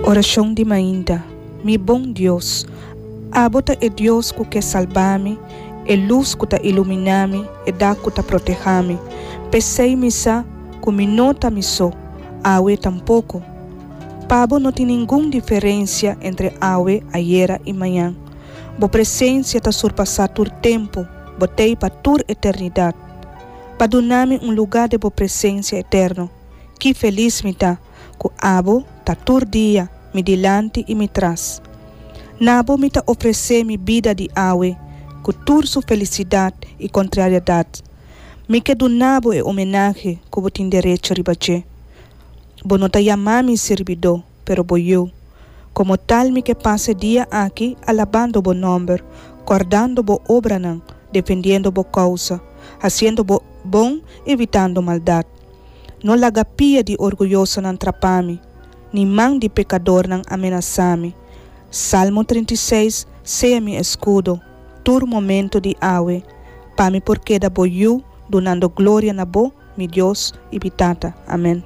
Orashon di mainta. Mi bon Dios, abo ta e Dios ku ke salbá mi, e lus ku ta iluminá mi, e dak ku ta protehá mi. P'esei mi sa ku mi no ta mi so, awe tampoko. Pa bo no tin ningun diferensia entre awe, ayera i mañan. Bo presensia ta surpasá tur tempu, botei pa tur eternidat. Bo a duna mi un lugá den bo presensia eterno. Ki felis mi ta! ku abo ta tur dia mi dilanti i mi tras. N'abo mi ta ofresé mi bida di awe ku tur su felisidat i kontrariadat. Mi ke duna'bo e omenahe ku bo tin derecho riba dje. Bo no ta yamá mi sirbidó, pero bo yu. Komo tal mi ke pasa e dia aki alabando bo nòmber, kòrdando bo obranan, defendiendo bo kousa, hasiendo bo bon, evitando maldat. No laga pia di orguyosonan trapá mi, ni man di pekadornan amenasá mi. Salmo trinta i seis Sea mi eskudo tur momentu di awe, pa mi por keda bo yu dunando gloria na bo, mi Dios i mi Tata. Amèn.